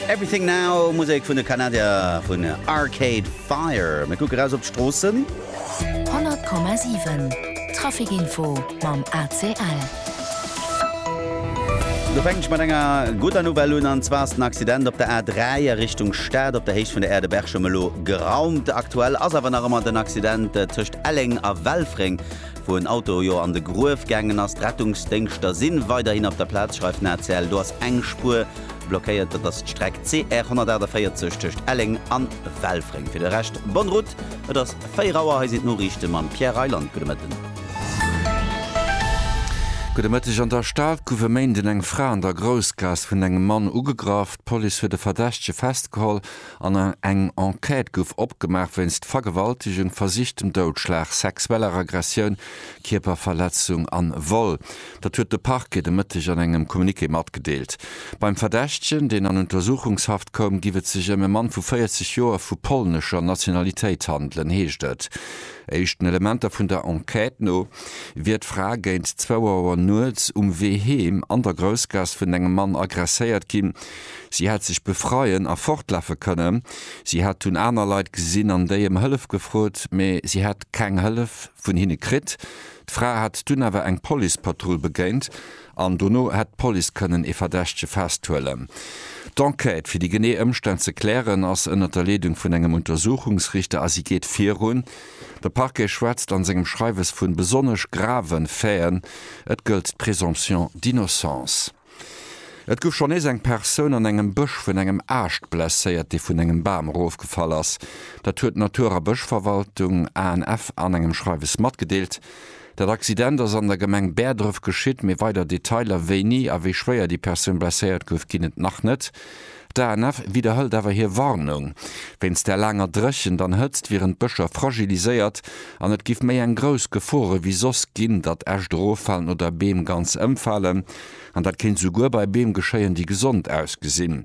Everything Now, Musek vun de Kanadier vun Arcade Fire. Mir kucke raus op d'Stroossen. 100,7 Traficinfo mam ACL. Do fänken ech mat enger gudder Nouvelle un, an zwar ass den Accident op der A3 a Richtung Stad op der Héicht vun der Aire de Berchem elo geraumt. Aktuell ass awer nach ëmmer den Accident tëscht Elleng a Welfréng wou en Auto jo an de Gruef gaangen ass. D'Rettungsdéngschter si weiderhin op der Plaz, schreift den ACL. Do ass eng Spuer blockéiert, dat ass d'Streck CR 148 tëscht Elleng a Welfréng. Fir de Rescht bonne route. Et ass 4 Auer, hei sinn d'Noriichte mam Pierre Reyland. Gudde Mëtten. Gudde Mëtteg. An der Stad gouf e Méinden eng Fra an der Groussgaass vun engem Mann ugegraff. D'Police huet e Verdächtege festgeholl. An eng Enquête gouf opgemaach wéinst Vergewaltegung, versichtem Doudschlag, sexueller Aggressioun, Kierperverletzung an Vol. Dat huet de Parquet de Mëtteg an engem Communiqué matgedeelt. Beim Verdächtegen, deen an Untersuchungshaft koum, giff et sech ëm e Mann vu 40 Joer vu polnescher Nationalitéit handelen, heescht et. Éischten Elementer vun der Enquête no wier d'Fra géint zwou Auer nuets um Wee heem an der Groussgaass vun engem Mann aggresséiert ginn. Si hätt sech befreien a fortlafe kënne. Si hätt dunn aner Leit gesinn an déi ëm Hëllef gefrot, mee si hätt keng Hëllef vun hinne kritt. D'Fra hätt dunn awer eng Policepatrull begéint an dono hätt d'Police kënnen ee Verdächtege festhuelen. D'Enquête, fir déi genee Ëmstänn ze klären, ass ënnert der Leedung vun engem Untersuchungsrichter a si geet virun. De Parquet schwätzt an sengem Schreiwes vu besonnesch grave Faiten. Et gëllt d'Présomption d'innocence. Et gouf schonn nees eng Persoun an engem Bësch vun engem Aascht blesséiert, dee vun engem Bam erofgefall ass. Dat huet d'Natur a Bëschverwaltung, ANF, an engem Schreiwes matgedeelt. Dat Accident ass an der Gemeng Bäerdref geschitt, mee weider Detailer, wéini a wéi schwéier déi Persoun blesséiert gouf, ginn et nach net. D'ANF widderhëlt awer hir Warnung. Wéinst der laanger Dréchent an Hëtzt wieren d'Bëscher fragiliséiert an et giff méi eng grouss Gefor ewéi soss ginn, datt Äscht eroffalen oder Beem ganz ëmfalen. An dat kéint souguer bei Beem geschéien, déi gesond ausgesinn.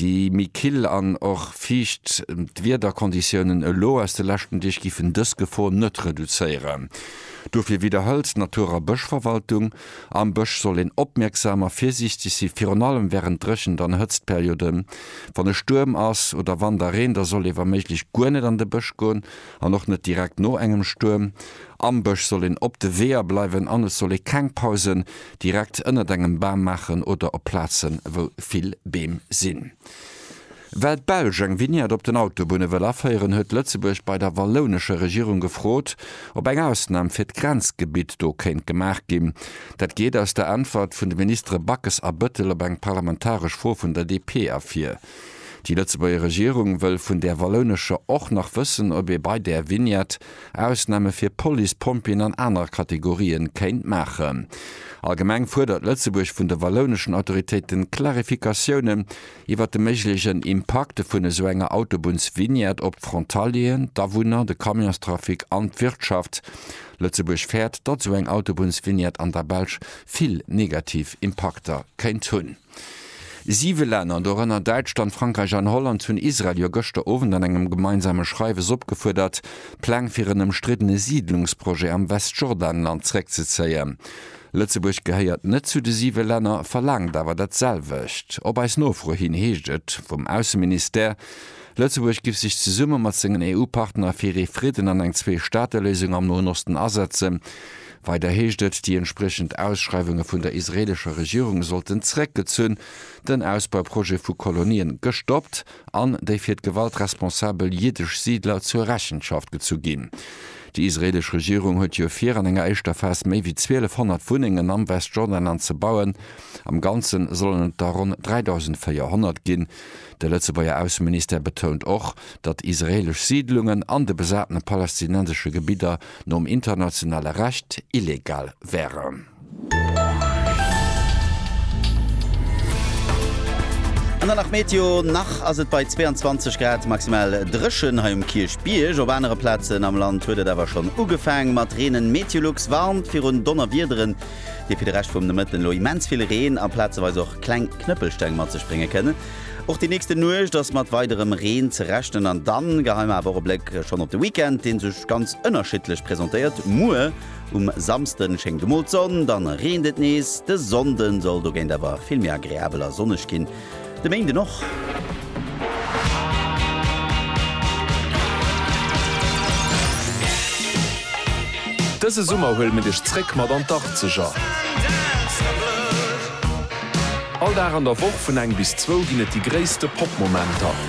Déi méi kill an och fiicht Wiederkonditiounen elo aus de leschten Deeg giffen dës Gefor net reduzéieren. Dofir widderhëlt d'Natur a Bëschverwaltung, Am Bësch soll een opmierksam a virsiichteg si virun allem wärend Dréchent an Hëtztperioden. Wann e Stuerm ass oder wann da reent, da soll ee wa méiglech guer net an de Bësch goen an och net direkt no engem Stuerm. Am Bësch soll een op de Weeër bleiwen an et soll ee keng Pausen direkt ënnert engem Bam maachen oder op Plazen wou vill Beem sinn. Well d'Belsch eng Vignette op den Autobunne wëll aféieren, huet Lëtzebuerg bei der wallounescher Regierung gefrot, ob eng Ausnam fir d'Grenzgebitt do kéint gemaach ginn. Dat geet aus der Äntwert vun de Ministere Backes a Bëttel op eng parlamentaresch Fro vun der DP ervir. Déi Lëtzebuerger Regierung wëll vun där wallounescher och nach wëssen, ob ee bei där Vignette Ausname fir Police, Pompjeeën an aner Kategorië kéint maachen. Allgemeng fuerdert Lëtzebuerg vun de wallouneschen Autoritéiten Klarifikatioune iwwer de méiglechen Impakte vun esou enger Autobunnsvignette op d'Frontalieren, d'Awunner, de Camionstrafic an d'Wirtschaft. Lëtzebuerg fäert, datt esou eng Autobunnsvignette an der Belsch vill negativ Impakter kéint hunn. Siwe Länner, dorënner Däitschland, Frankräich an Holland, hunn Israel jo gëschter Owend an engem gemeinsame Schreiwes opgefuerdert, d'Pläng fir en ëmstriddene Siidlungsprojet am Westjordanland zeréckzezéien. Lëtzebuerg gehéiert net zu de siwe Länner, verlaangt awer dat selwecht. Op eis Nofro hin heescht et vum Ausseministère, Lëtzebuerg giff sech zesumme mat sengen EU-Partner fir ee Fridden an eng Zwee-Staate-Léisung am Noen Osten asetzen. Weider heescht et, déi entspriechend Ausschreiwunge vun der israeelescher Regierung sollten zeréckgezunn, den Ausbauprojet vu Kolonien gestoppt, an déi fir d'Gewalt responsabel jiddesch Siidler zur Rechenschaft gezu ginn. Déi israeelesch Regierung huet jo vir, an enger éischter Phas méi wéi 1.200 Wunnengen am Westjordanland ze bauen. Am Ganze sollen et der ronn 3.400 ginn. De Lëtzebuerger Ausseministère betount och, datt israeelesch Siidlungen an de besatene palästinensesche Gebidder nom internationale Recht illegal wären. An dann nach Meteo, nach ass et bei 22 Grad maximal dréchen hei um Kierchbierg. Op anere Plazen am Land huet et awer schonn ugefaang mat reenen. Meteolux warnt virun Donnerwiederen, déi fir de Rescht vum Nomëtten elo immens vill Reen a plazeweis och kleng Knëppelsteng mat sech brénge kënnen. Och déi nächste Nuecht ass mat weiderem Reen ze rechnen an dann geheim awer och e Bléck schonn op de Weekend, dee sech ganz ënnerschiddlech presentéiert. Muer Um Samsden schéngt emol d'Sonn, dann reent et nees. De Sonnden soll dogéint awer vill méi agreabel a sonneg ginn, de Méinden och. Dëse Summer huele mir dech zréck mat an d'Arkzeger. All Dag an der Woch vun eng bis zwou ginn et déi gréisste Pop-Momenter.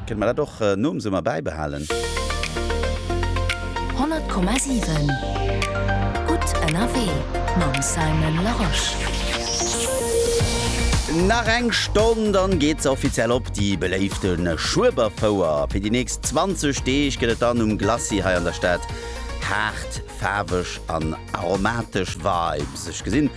Kënne mer dat och nom Summer bäibehalen? 100,7 Gutt ënnerwee mam Simon Larosche. Nach eng Stonn, dann geet se offiziell op, déi beléifte Schueberfouer. Fir déi nächst 20 Deeg gëtt et dann um Glacis hei an der Stad haart, faarweg an aromatesch Vibes. Ech gesinn,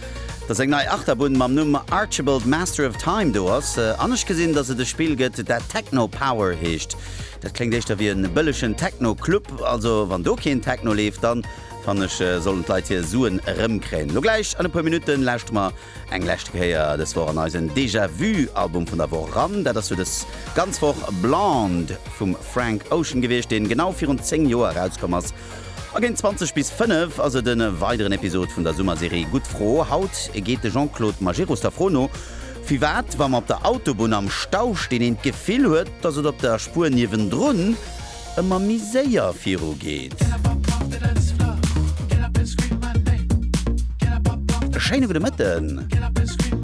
dass eng nei Achterbunn mam Numm Archibald Master of Time do ass, an ech gesinn, dass et e Spill gëtt, dat Techno Power heescht. Dat kléngt éischter wéi e bëllegen Techno Club. Also wann do keen Techno leeft, dann fannen ech, sollen d'Leit hir Suen erëmkréien. Lo gläich an e puer Minutten lauschtere mer eng leschte Kéier dës Woch an eisen Déjà Vu Album vun der Woch eran. Dat ass jo dës ganz Woch Blonde vum Frank Ocean gewiescht, deen genau virun 10 Joer erauskomm ass. A géint 20 bis 5 ass et e weideren Episod vun der Summerserie Gutt Fro. Haut geet de Jean-Claude Majerus der Fro no, firwat wa mer op der Autobunn am Stau stinn, een d'Gefill huet, datt et op der Spuer niewendrun ëmmer méi séier viru geet. E schéine gudde Mëtten.